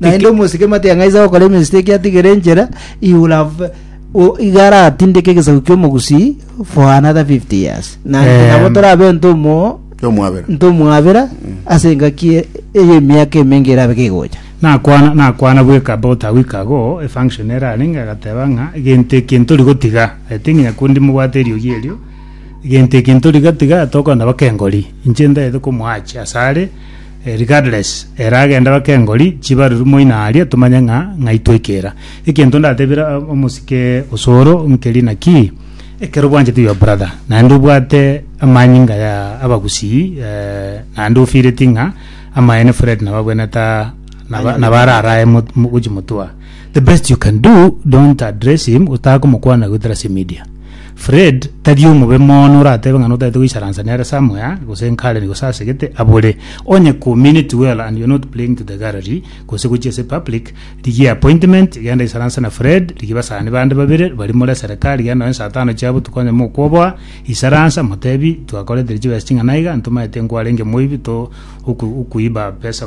naende omosike mati ang'aise gokora emistake atigere enchera he will have o- iga aratindeke egesaku ki'omogusii for another 50 years na Em. nabo torabe ntomo Kyomwabera. ntomwabera ase engaki e- eye emiaka emenge erabe kegocha nakwana nakwana bweka about a week ago efunction erarenge agateba ng'a egento eke ntori gotiga i think nyakundi mobwate eriogi erio egento eke ntori gatiga tokonda baka engori inche ntagete komoachi asare Regardless, ere agende baka engori chibaruru moino aria tomanye ng'a ng'ai twekera. Egento ndatebire omosike osoro nkeri naki, ekero obwanchete your brother naende obwate amanyinga ya abagusii naende ofeeleti ng'a amaene Fred nabo abwenerete naba naba ararae mo gochia motwe. The best you can do don't address him otakomokwana goetera ase media. Fred tari omobe mono oratebe ng'a notaete goicharansa nere somewhere gose nkare nigo sasegete abore. Onye community well and you're not playing to the gallery gose gochia ase public rigia appointment genda isaransa na Fred rigia basani bande babere bari more serikali genda nonye saa tano chia botuko onye mokoboa isaransa motebi twakoretire chibesa ching'ana iga ntomaete nkwarenge moibi to oku- okuiba pesa